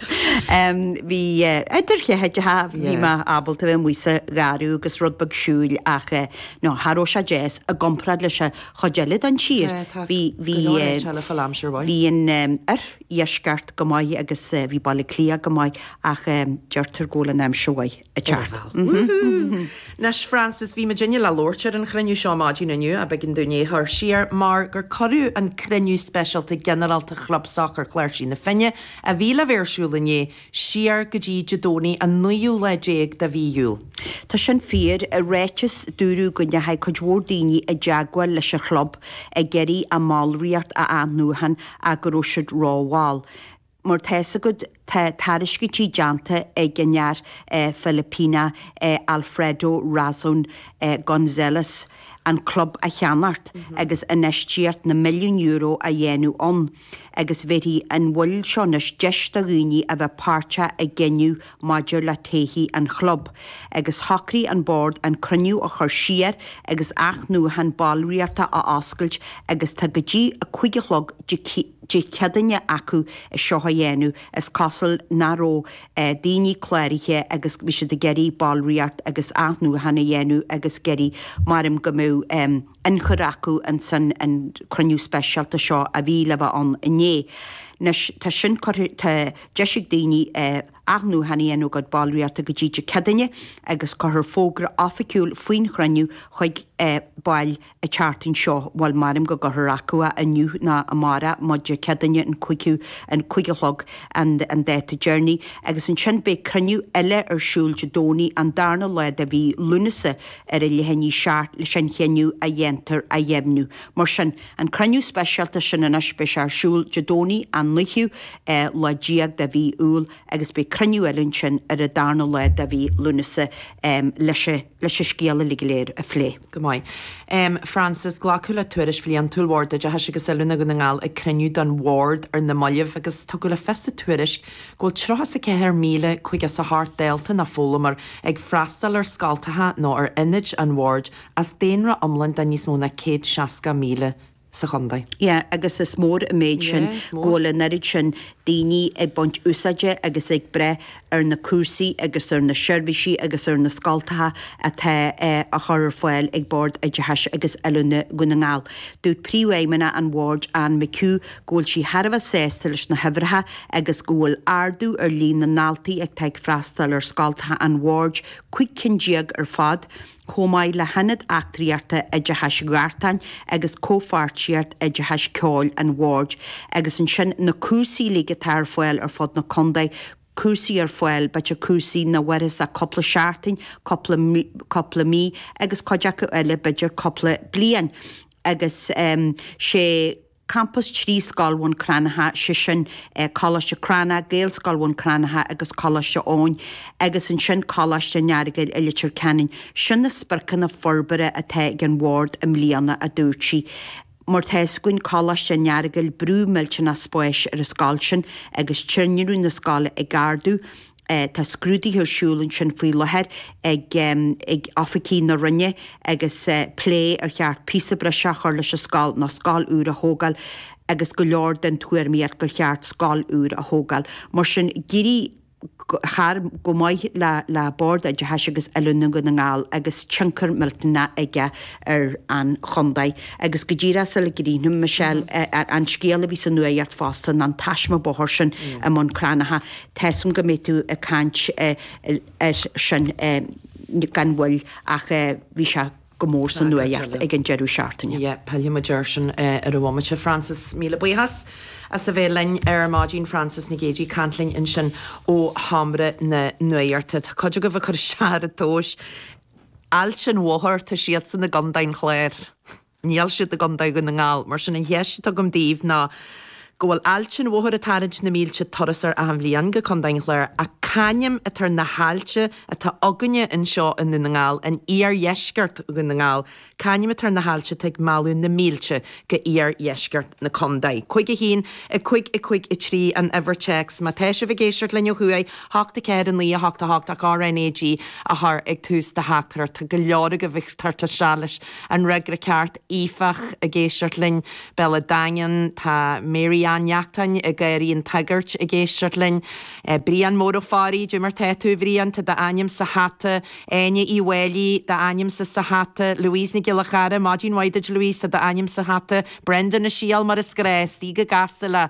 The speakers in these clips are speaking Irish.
Bhí idir cheathaideacha bhí mé ábalta bheith amuigh sa gharraí agus rud beag siúil ach no, cha raibh sé deas i gcomparáid leis an chuid eile den tír. Bhí, bhí, bhí an oirdheisceart go maith agus bhí Baile Átha Cliath go maith ach deirtear go bhfuil an aimsir mhaith. a Charvel. Nes Francis bhí muidinne le labhairt ar an chruinniú seo maidin inniu ach b'éigean dúinn é chur siar mar gur cuireadh an cruinniú speisialta ginearálta Chlub Sacair Chláirsigh na Finne a bhí le bheith ar siúl inné siar go dtí Dé Domhnaigh an naoú lá déag de mhí Iúil. Tá sin fíor. I ráiteas dúradh go ndeachaigh cuid mhór daoine i dteagmháil leis an chlub ag iarraidh a mballraíocht a athnuachan ach go raibh siad rómhall. Mar tá 'fhios agat, tá tairiscintí déanta ag an fhear Filipíneach Alfredo Razon Gonzalez an club a cheannacht agus infheistíocht na milliún euro a dhéanamh ann agus bhéarfaidh an mhoill seo anois deis do dhaoine a bheith páirteach i gcinneadh maidir le todhchaí an chlub, agus shocraigh an Bord an cruinniú a chur siar agus athnuachan ballraíochta a oscailt agus tá go dtí a cúig a chlog Dé Céadaoine acu é seo a dhéanamh. Is cosúil nach raibh daoine cláraithe agus bhí siad ag iarraidh ballraíocht agus athnuachan a dhéanamh agus ag iarraidh, m'anam go mbeadh. ionchur acu insan an cruinniú speisialta seo a bhí le bheith ann inné. Anois, tá sin curtha, tá deis ag daoine athnuachan a dhéanamh ar a gcuid ballraíochta go dtí Dé Céadaoine agus cuirfear fógra oifigiúil faoin chruinniú chuig baill an tseachtain seo, bhuel, m'anam go gcuirfear acu a inniu nó amárach, más Dé Céadaoine an cúigiú, an cúig a chlog an an dáta deiridh. Agus ansin beidh cruinniú eile ar siúl Dé Domhnaigh, an darna lá de mhí Lúnasa, ar a leath i ndiaidh a seacht leis an chinneadh a dhéantar a dheimhniú. Mar sin, an cruinniú speisialta sin anois, beidh sé ar siúl Dé Domhnaigh an 9ú lá déag de mhí Iúil agus beidh cruinniú eile ansin ar an darna lá de mhí Lúnasa leis an scéal uilig go léir a phlé. Go maith. Frances, glacadh le tuairisc bhliantúil Bhord Oideachais agus Oiliúna Dhún na nGall ag cruinniú den Bhord ar na mallaibh agus tugadh le fios sa tuairisc go bhfuil 34,000 cúig is ocht dalta nó foghlaimeoir ag freastal ar scoltacha nó ar ionaid an Bhoird as daonra iomlán de níos mó ná 160,000 sa chontae. Yeah, agus is mór an méid sin go bhfuil an oiread sin daoine ag baint úsáide agus ag breith ar na cúrsaí agus ar na seirbhísí agus ar na scoltacha atá á chur ar fáil ag Bord Oideachais agus Oiliúna Dhún na nGall. Dúirt Príomhfheidhmeannach an Bhoird, Anne McHugh, go bhfuil sí thar a bheith sásta leis na huimhreacha agus go bhfuil ardú ar líon na ndaltaí atá ag freastal ar scoltacha an Bhoird, 15 cinn ar fad, chomh maith le hIonad Eachtraíochta Oideachais Ghartáin agus Comhpháirtíocht Oideachais Ceoil an Bhoird, agus ansin na cúrsaí uilig atá ar fáil ar fud na contae, cúrsaí ar fáil, b'fhéidir cúrsaí nach maireann ach cúpla seachtain, cúpla, cúpla mí, agus cuid acu eile, b'fhéidir cúpla bliain. Agus sé. campas trí Scoil Bhun Cranncha, sé sin, Coláiste Cranncha, Gaelscoil Bhun Cranncha agus Coláiste Eoin, agus ansin Coláiste an Earagail i Leitir Ceanainn. Sin na spriocanna forbartha atá ag an Bhord i mbliana, a dúirt sí. Mar tá fhios againn Coláiste an Earagail brú millteanach spáis ar an scoil sin agus tinreamh na scoile ag ardú, Tá scrúduithe ar siúl ansin faoi láthair ag oifigigh na Roinne agus plé ar cheart píosa breise a chur leis an scoil nó scoil úr a thógáil agus go leor den tuairimíocht gur cheart scoil úr a thógáil. Mar sin, d'éirigh thar go maith le Bord Oideachais agus Oiliúna Dhún na nGall agus tionchar millteanach aige ar an chontae. Agus go díreach sula gcríochnaím, Michelle, an scéal a bhí sa nuaidheacht fosta ná an taisme bóthair sin i mBun Cranncha. Measaim go mbeidh tú ag caint air sin gan mhoill ach bhí sé go mór sa nuaidheacht ag an deireadh seachtaine. Yep, fillfidh muid air sin ar an bhomaite. Frances, míle buíochas as a bheith linn ar maidin. Frances Nic Géadaigh ag caint linn ansin ó Sheomra na Nuaidheachta. Tá cuid agaibh ag cur isteach ar an tomhas. Aillte an Mhothair, tá siadsan i gCondae an Chláir. Níl siad i gContae Dhún na nGall, mar sin an cheist atá agam daoibh ná go bhfuil Aillte an Mhothair ag tarraingt na mílte turasóir achan bhliain go Contae an Chláir, ach c'ainm atá ar na haillte atá againne anseo i nDún na nGall, in iardheisceart Dhún na nGall? C'ainm atá ar na haillte atá ag mealladh na mílte go iardheisceart na contae? Cúig a haon, a cúig, a cúig a trí an uimhir téacs má tá sibh ag éisteacht linn ó thuaidh, 8 4 9 8 8 ach RNAG a chur ag tús do theachtaireacht, tá go leor agaibh ag teacht isteach leis. An fhreagra ceart, Aoife, ag éisteacht linn. Béal an Daingin. Tá Mary Ann Neachtáin i nDoirí an tSagairt ag éisteacht linn. Brian Mór Ó Fearraigh, Dé mar tá tú, a Bhriain? Tá d'ainm sa hata. Áine Uí Mháilí, d'ainm sa hata. Louise Nic Giolla Chearra, Maidin mhaith duit, Louise. Tá d'ainm sa hata. Brendan a Shiel, mar is gnách, istigh go gasta le.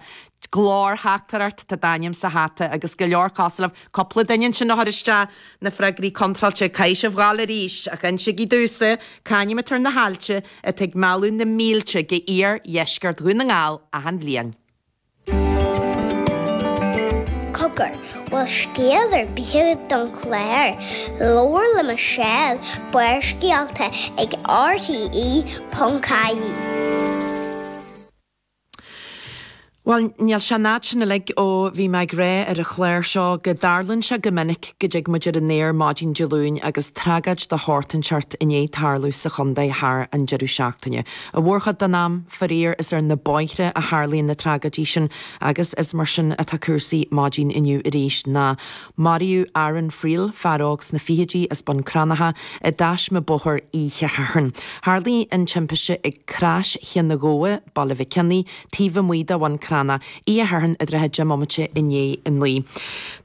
do theachtaireacht, tá d'ainm sa hata agus go leor acu agaibh, cúpla duine ansin ag cur isteach, na freagraí contráilte caithfidh sibh a ghabháil arís, ach insígí domhsa, c'ainm atá ar na haillte atá ag mealladh na mílte go iar dheisceart Dhún na nGall achan bhliain. Cogar, an bhfuil scéal ar bith don chlár, labhair le Michelle, Barrscéalta ag RTÉ.ie. Bhuel, níl sé an fhad sin uilig ó bhí mé ag rá ar an chlár seo go dtarlaíonn sé go minic go dtig muid ar an aer maidin Dé Luain agus tragóid de sheort inteacht i ndiaidh tarlú sa chontae thar an deireadh seachtaine. An mhórchuid den am, faraor, is ar na bóithre a tharlaíonn na tragóidí sin agus is mar sin atá cúrsaí maidin inniu arís ná Maraíodh Aaron Friel, fear óg sna fichidí, as Bun Cranncha i dtaisme bóthair oíche Shathairn. Tharlaigh an timpiste ag Crois Chinn an Ghabha, Baile Mhic Cionaoith, taobh amuigh de Bhun Cranncha, oíche Shathairn i dtrátha 10 mbomaite i ndiaidh a naoi.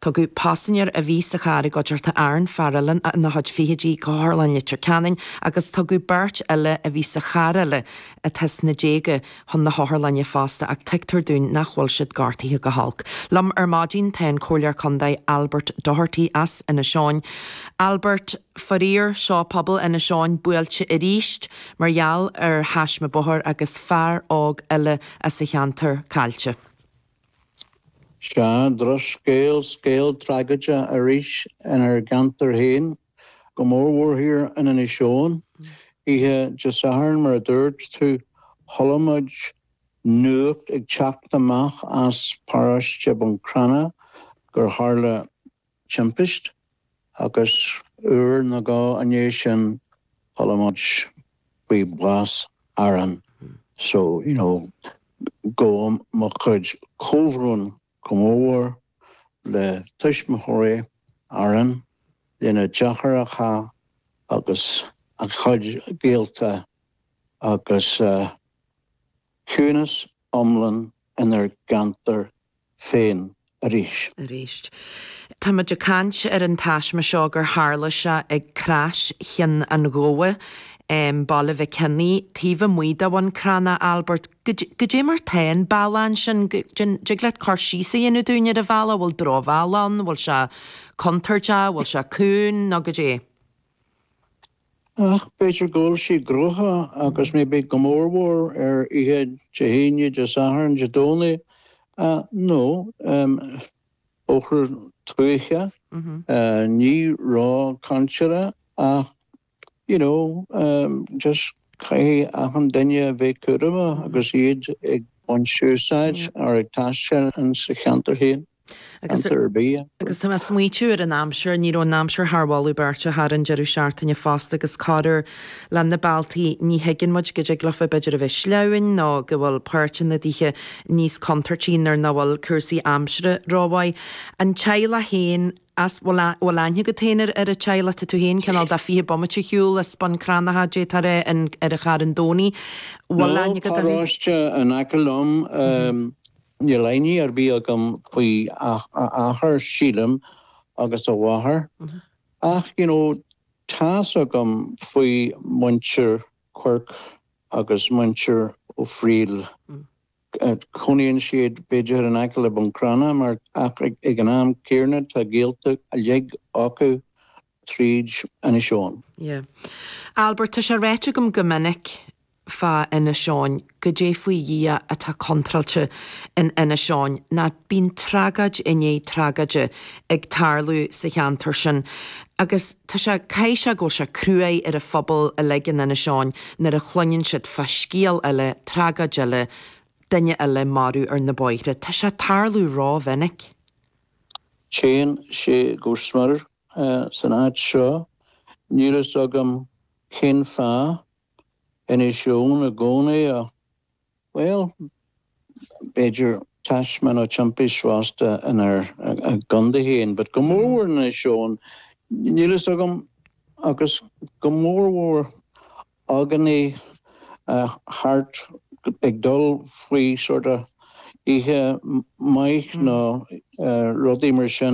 Tugadh paisinéir a bhí sa charr i gcuideachta Aaron, fear eile ina chuid fichidí, go hotharlann Leitir Ceanainn agus tugadh beirt eile a bhí sa charr eile, atá sna déaga, chun na hotharlainne fosta ach tuigtear dúinn nach bhfuil siad gortaithe go holc. Liom ar maidin tá an Comhairleoir Contae Albert Doherty as Inis Eoghain. Albert, Faraor, seo pobal Inis Eoghain buailte arís mar gheall ar thaisme bóthair agus fear óg eile as an cheantar caillte. Sea, drochscéal, scéal tragóide arís inár gceantar féin. Go mór mhór thiar in Inis Eoghain. Oíche Dé Sathairn, mar a dúirt tú, chuala muid nuacht ag teacht amach as paróiste Bun Cranncha gur tharla timpist agus uair nó dhó i ndiaidh sin chuala muid faoi bhás Aaron. So, you know, gabhaim mo chuid comhbhrón. Comhbhá le tuismitheoirí Aaron, lena deartháireacha agus a chuid gaolta agus ciúnas iomlán inár gceantar féin arís. Tá muid ag caint ar an taisme seo gur tharla sé ag Crois Chinn an Ghabha, Baile Mhic Cionaoith, taobh amuigh de Bhun Cranncha, Albert, Goidé mar atá an bealach sin, an dtig leat cur síos a dhéanamh dúinn ar an bhealach, an bhfuil drochbhealach ann, an bhfuil sé contúirteach, an bhfuil sé cúng nó goidé? Ach b'fhéidir go bhfuil sí gnoitheach agus mé bith, go mórmhór ar oíche Dé hAoine, Dé Sathairn, Dé Domhnaigh nó Ochtú Tuaithe, ní raibh caint ar ach You know, just caithfidh achan duine a bheith cúramach agus iad ag baint úsáid or ag taisteal ins a cheantar féin, ceantar ar bith. Agus tá mé ag smaoitiú ar an aimsir, ní raibh an aimsir thar mholadh beirte thar an deireadh seachtaine fosta agus corruair leis na bealtaí ní thuigeann muid go dtig leofa b'fhéidir a bheith sleamhain nó go bhfuil páirteanna daofa níos contúirtí nuair nach bhfuil cúrsaí aimsire rómhaith. An teaghlach féin, An bhfuil aithne agat féin ar an teaghlach, tá tú féin cineál de fiche bomaite siúil as Bun Cranncha, déarfá, ar an Charn Domhnaigh, bhfuil aithne agat orthu? An pharóiste in aice liom, níl aithne ar bith agam faoi a athair, sílim, agus a mháthair, ach, you know, tá's agam faoi muintir Quirke agus muintir O'Friel. Cónaíonn siad b'fhéidir in aice le Bun Cranncha ach ag an am chéanna tá gaolta uilig acu tríd Inis Eoghain. Yeah. Albert, tá sé ráite agam go minic fá Inis Eoghain, goidé faoi Dhia atá contráilte in Inis Eoghain, nó bíonn tragáid i ndiaidh tragáide ag tarlú sa cheantar sin agus tá sé caithfidh sé go bhfuil sé cruaidh ar an phobal uilig in Inis Eoghain nuair a chluineann siad fá scéal eile, tragáid eile, duine eile maraithe ar na bóithre. Tá sé ag tarlú ró-mhinic. Téann sé go smior san áit seo. Níl fhios agam cén fáth. Inis Eoghain i gcónaí. Bhuel, b'fhéidir taisme nó timpist fosta inár gcondae féin, but go mórmhór in Inis Eoghain, níl fhios agam, agus go mórmhór againne thart ag dul faoi sort of oíche maith nó rudaí mar sin.